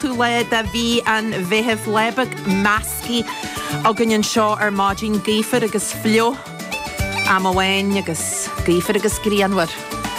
tú lá de mhí an Mheithimh lá beag measctha againn anseo ar maidin, gaofar agus fliuch am amháin agus gaofar agus grianmhar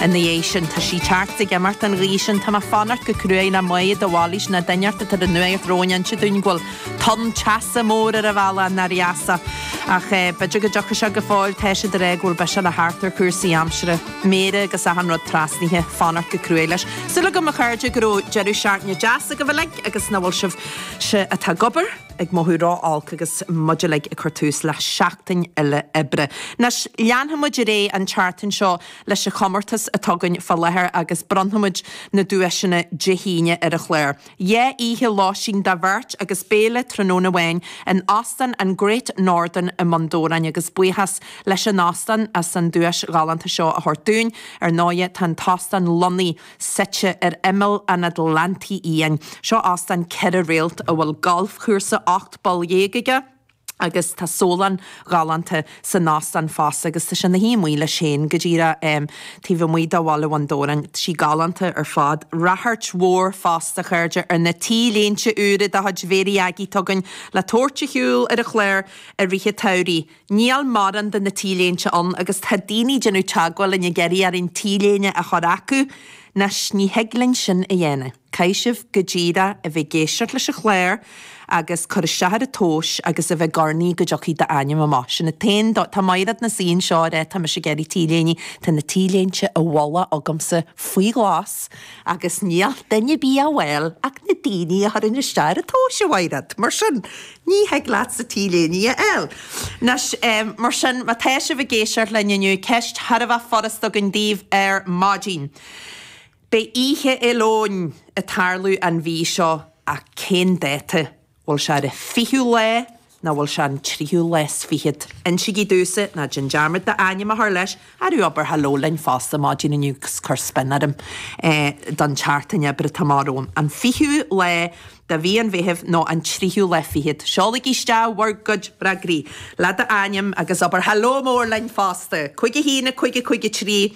ina dhiaidh sin. Tá sí tearc ag imirt an ghaoth sin. Tá mé ag fanacht go cruaidh le Maidhc de Bhailís nó duine inteacht atá ar an nuacht romhainn inse dúinn go bhfuil tonn teasa mór ar an bhealach nár dheas ach b'fhéidir go dtiocfaidh sé go fóill. Tá siad ag rá go bhfuil biseach le theacht ar chúrsaí aimsire. méara agus achan rud trasnaithe, fanacht go cruaidh leis. Súil agam, a chairde, go raibh deireadh seachtaine deas agaibh uilig agus nach bhfuil sibhse atá ag obair ag mothú ró-olc agus muid uilig ag cur tús le seachtain eile oibre. Anois, leanfaimid ar aghaidh an tseachtain seo leis an chomórtas atá againn fá láthair agus bronnfaimid na duaiseanna Dé hAoine ar an chlár. Dhá oíche lóistín do bheirt agus béile tráthnóna amháin in Óstán an Great Northern i mBun Dobhráin agus buíochas leis an óstán as an duais ghalánta seo a thabhairt dúinn. Ar ndóighe tá an t-óstán lonnaithe suite ar imeall an Atlantaigh Fhiáin. Seo óstán ceithre réalt a bhfuil galfchúrsa ocht bpoll dhéag aige, agus tá sólann ghalánta san óstán fosta agus tá sé 'na shuí amuigh leis féin go díreach taobh amuigh de Bhaile Bhun Dobhráin. Tá sí galánta ar fad. Ráchairt mhór fosta, a chairde, ar na T-léinte úra de chuid Mhéirí Aggie atá againn le tabhairt ar shiúl ar an chlár i rith an tsamhraidh. Níl mórán de na T-léinte ann agus tá daoine ag déanamh teagmháil linn ag iarraidh orainn T-léine a chur chucu, anois ní thig linn sin a dhéanamh. Caithfidh sibh go díreach a bheith ag éisteacht leis an chlár agus cur isteach ar an tomhas agus a bheith ag urnaí go dtiocfaidh d'ainm amach. Sin an t-aon dóigh. Tá Maighread ina suí anseo, ag rá tá mise ag iarraidh t-léine. Tá na t-léinte i bhfolach agamsa faoi ghlas agus ní thig le duine ar bith a fháil ach na daoine a chuireann isteach ar an tomhas, a Mhaighread. Mar sin, ní thig leatsa t-léine a fháil. Anois, mar sin, má tá sibh ag éisteacht linn inniu, ceist thar a bheith furasta againn daoibh ar maidin. Beidh Oíche Fhéile Eoin ag tarlú an mhí seo ach cén dáta? Bhfuil sé ar an 20ú lá nó bhfuil sé ar an 3ú lá 's fichead? Insigí domhsa, ná déan dearmad d'ainm a chur leis, arú abair hello linn fosta maidin inniu 's cuir spin orm don tseachtain oibre atá amach romham. An 20ú lá de mhí an Mheithimh nó an 3ú lá fichead? Seolaigí isteach bhur gcuid freagraí, le d'ainm agus abair hello mór linn fosta! Cúig a haon, a cúig, a cúig, a trí.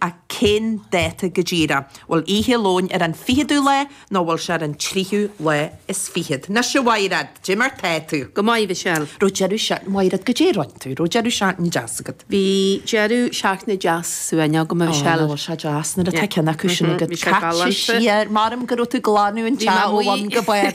a cén dáta go díreach? Bhfuil Oíche Fhéile Eoin ar an ficheadú lá nó bhfuil sé ar an tríú lá is fichead? Anois a Mhairéad! Caidé mar tá tú! Go maith, Mhichelle! Raibh deireadh seachtaine, Mhairéad, caidé a rinn tú? Raibh deireadh seachtaine deas agat? Bhí deireadh seachtaine deas ciúin agam, a Mhichelle. Ó, nach bhfuil sé deas nuair atá ceann acu sin agat. Caite sí ar m'anam go raibh tú ag glanadh an teach ó bhun go barr.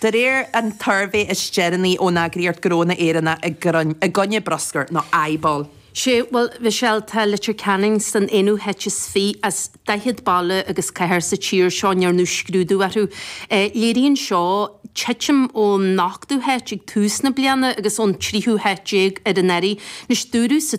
De réir an tsuirbhé is déanaí ón eagraíocht Gnónna Éireann i gcoinne bruscar nó IBAL. Sea, bhuel, Michelle, tá Leitir Ceanainn san aonú háit is fiche as daichead baile agus cathair sa tír seo a ndearnadh scrúdú orthu. Léiríonn seo titim ón n-ochtú háit ag tús na bliana agus ón dtríú háit déag an t-am seo anuraidh. Anois, dúradh sa.